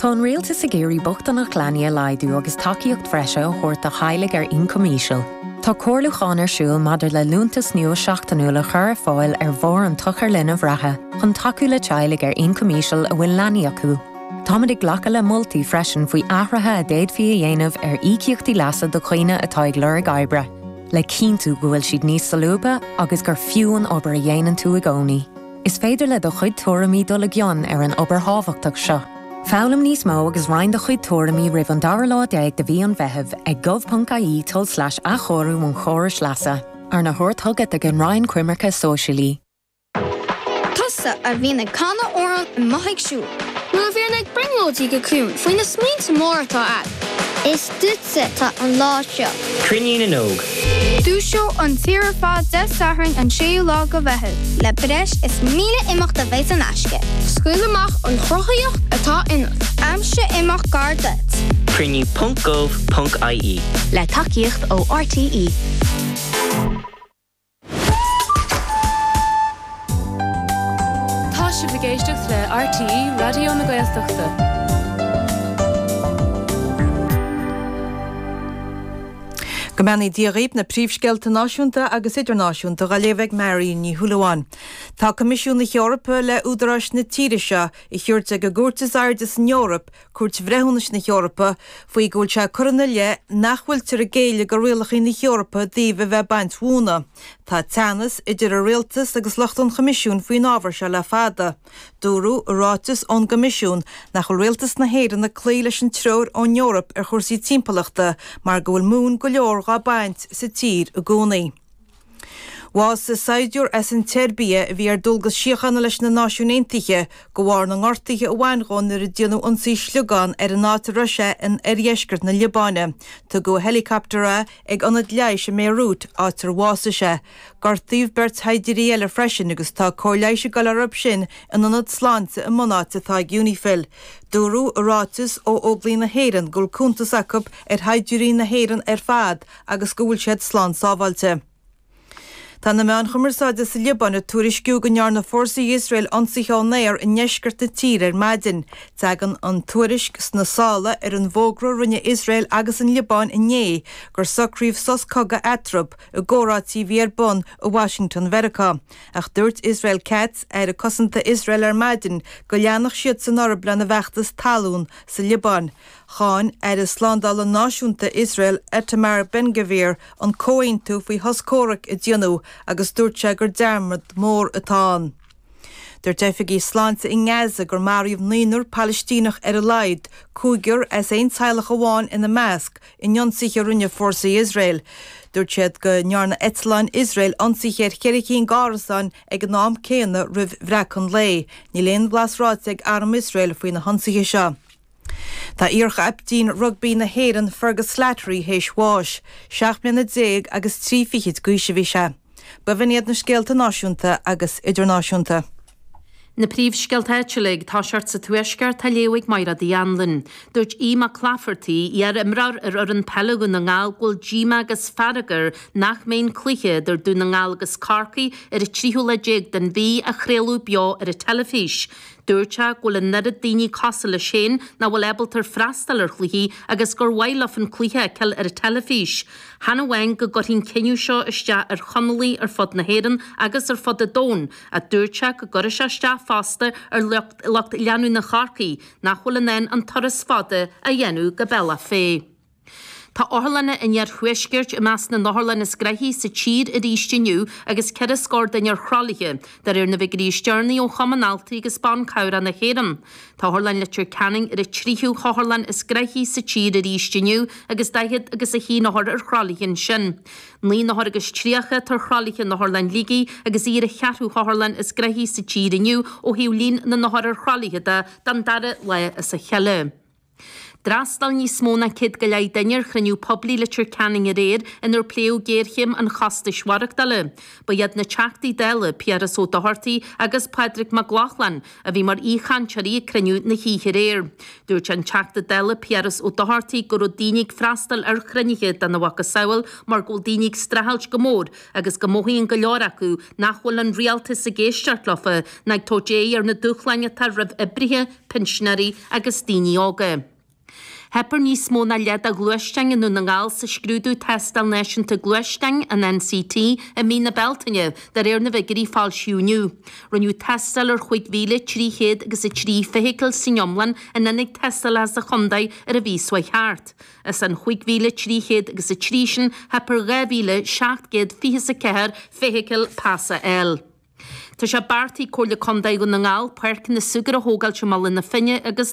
Tá an Rialtas ag iarraidh bochtaineacht leanaí a laghdú agus tacaíocht bhreise a thabhairt do theaghlaigh ar ioncam íseal. Tá comhairliúchán ar siúl maidir le liúntas nua seachtainiúil a chur ar fáil ar bharr an tsochair linbh reatha chun tacú le teaghlaigh ar ioncam íseal a bhfuil leanaí acu. Táimid ag glacadh le moltaí freisin faoi athruithe a d'fhéadfaí a dhéanamh ar íocaíochtaí leasa do dhaoine atá ag lorg oibre. le cinntiú go bhfuil siad níos solúbtha agus gur fiú an obair a dhéanann tú i gcónaí. Is féidir le do chuid tuairimí dul i gcion ar an obair thábhachtach seo. Foghlaim níos mó agus roinn do chuid tuairimí roimh an dara lá déag de mhí an Mheithimh ag gov.ie tulslais-athchóiriú-an-chórais-leasa. Arna thabhairt chugat ag an Roinn Coimirce Sóisialaí. Tusa a bhíonn ag canadh amhrán i mo thighse siúd. Nó a bhíonn ag brionglóidí go ciúin faoi na smaointe móra atá agat. Is duitse atá an lá seo. Cruinniú na nÓg. Dúiseoidh an tír ar fad Dé Sathairn an 6ú lá de Mheitheamh. Le breis is 1000 imeacht a bheidh in aisce. Scaoil amach an chruthaitheacht atá ionat. Aimsigh imeacht gar duit. Cruinniú ponc gov ponc ie. Le tacaíocht ó RTÉ. Tá sibh ag éisteacht le RTÉ Raidió na Gaeltachta. Go mbeannaí Dia dhaoib na príomhscéalta náisiúnta agus idirnáisiúnta dá léamh ag Máirín Ní Shúilleabháin. Tá Coimisiún na hEorpa le údaráis na tíre seo a thabhairt ag an gCúirt is Airde san Eoraip Cúirt Bhreithiúnais na hEorpa, faoi go bhfuil sé curtha ina leith nach bhfuiltear ag géilleadh do rialacha na hEorpa i dtaobh a bheith ag baint mhóna. Tá teannas idir an Rialtas agus lucht an Choimisiúin faoin ábhar seo le fada. Dúradh i ráiteas ón gCoimisiún nach bhfuil Rialtas na hÉireann ag cloí leis an treoir ón Eoraip ar chúrsaí timpeallachta mar go bhfuil móin go leor dhá baint sa tír i gcónaí. Bhásaigh saighdiúr as an tSeirbia a bhí ar dualgas síochána leis na Náisiúin Aontaithe de bharr na ngortuithe a bhain dhó nuair a déanadh ionsaí sliogán ar an áit a raibh sé in oirdheisceart na Liobáine. Tugadh i héileacaptar é ag ionad leighis i mBéiriút, áit ar bhásaigh sé. Gortaíodh beirt shaighdiúirí eile freisin agus tá cóir leighis ag dul orthu sin in ionad sláinte i mbunáit atá ag Unifil. Dúradh i ráiteas ó Óglaigh na hÉireann go bhfuil cuntas acu ar shaighdiúirí na hÉireann ar fad agus go bhfuil siad slán sábháilte. Tá na meáin chumarsáide sa Liobáin ag tuairisciú go ndearna fórsaí Iosrael ionsaithe ón aer i ndeisceart na tíre ar maidin. Tagann an tuairisc sna sála ar an bhfógra a rinne Iosrael agus an Liobáin inné gur socraíodh sos cogaidh eatarthu, i gcomhráití a bhí ar bun i Washington Mheiriceá. Ach dúirt Israel Katz, Aire Cosanta Iosrael ar maidin go leanfadh siadsan orthu lena bhfeachtas talún sa Liobáin. Cháin Aire Slándála Náisiúnta Iosrael Itamar Ben-Gvir an comhaontú faoi shos comhraic a déanadh agus dúirt sé gur dearmad mór atá ann. Dúirt oifigigh sláinte i nGaza gur maraíodh naonúr Palaistíneach ar a laghad, cúigear as aon teaghlach amháin ina measc, in ionsaithe a rinne fórsaí Iosrael. Dúirt siad go ndearna eitleáin Iosrael ionsaithe ar cheithre cinn d'árasáin ag an am céanna roimh bhreacadh an lae. Níl aon bhlas ráite ag Arm Iosrael faoi na hionsaithe seo. Tá iarchaiptín rugbaí na hÉireann Fergus Slattery théis bháis. Seacht mbliana déag agus trí fichid d'aois a bhí sé. B'in iad na scéalta náisiúnta agus idirnáisiúnta. Na príomhscéalta áitiúla, ag tosacht sa Tuaisceart, á léamh ag Máire D. Anluain. Dúirt Aodh Mac Laifeartaigh, iar-imreoir ar fhoireann peile Dhún na nGall, go bhfuil díomá agus fearg air nach mbeidh an cluiche idir Dún na nGall agus Corcaigh ar an tríú lá déag den mhí á chraoladh beo ar an teilifís. Dúirt sé go bhfuil an oiread daoine cosúil leis féin nach bhfuil ábalta freastal ar chluichí agus gur mhaith leo an cluiche a fheiceáil ar an teilifís. Chan amháin go gcuirfidh an cinneadh seo isteach ar Chonallaigh ar fud na hÉireann agus ar fud an domhain ach dúirt sé go gcuirfeadh sé isteach fosta ar lucht leanúna Chorcaí nach bhfuil in ann an turas fada a dhéanamh go Bealach Féich. Tá otharlanna an Iarthuaiscirt i measc na n-otharlann is graithí sa tír arís inniu agus ceithre scór duine ar thralaithe, de réir na bhfigiúirí is deireanaí ó Chumann Altraí agus Ban Cabhrach na hÉireann. Tá Otharlann Leitir Ceanainn ar an tríú hotharlann is graithí sa tír arís inniu agus daichead agus a haon othar ar thralaithe ansin. Naoi n-othar agus tríocha atá ar thralaithe in Otharlann Shligigh agus í ar an cheathrú hotharlann is graithí sa tír inniu ó thaobh líon na n-othar ar thralaithe de, don dara lá as a chéile. D'fhreastail níos mó ná céad go leith duine ar chruinniú poiblí i Leitir Ceanainn aréir inar pléadh géarchéim an chostais mhaireachtála. Ba iad na Teachtaí Dála Piaras Ó Dochartaigh agus Pádraig Mac Lochlainn a bhí mar aoichainteoirí ag cruinniú na hoíche aréir. Dúirt an Teachta Dála Piaras Ó Dochartaigh go raibh daoine ag freastal ar chruinnithe dena mhacasamhail mar go bhfuil daoine ag streachailt go mór agus go mothaíonn go leor acu nach bhfuil an rialtas ag éisteacht leo ná ag tabhairt aghaidh ar na dúshláin atá roimh oibrithe, pinsinéirí agus daoine óga. Theip ar níos mó ná leath de ghluaisteáin i nDún na nGall sa scrúdú Tástáil Náisiúnta Gluaisteáin, an NCT, i mí na Bealtaine, de réir na bhfigiúirí a foilsíodh inniu. Rinneadh tástáil ar chúig mhíle trí chéad agus a trí feithicil san iomlán in ionaid tástála sa chontae ar an mhí seo chuaigh thart. As an chúig mhíle trí chéad agus a trí sin, theip ar dhá mhíle seacht gcéad fiche is a ceathair feithicil pas a fháil. Tá sé beartaithe ag Comhairle Contae Dhún na nGall páirceanna súgair a thógáil i mBaile na Finne agus.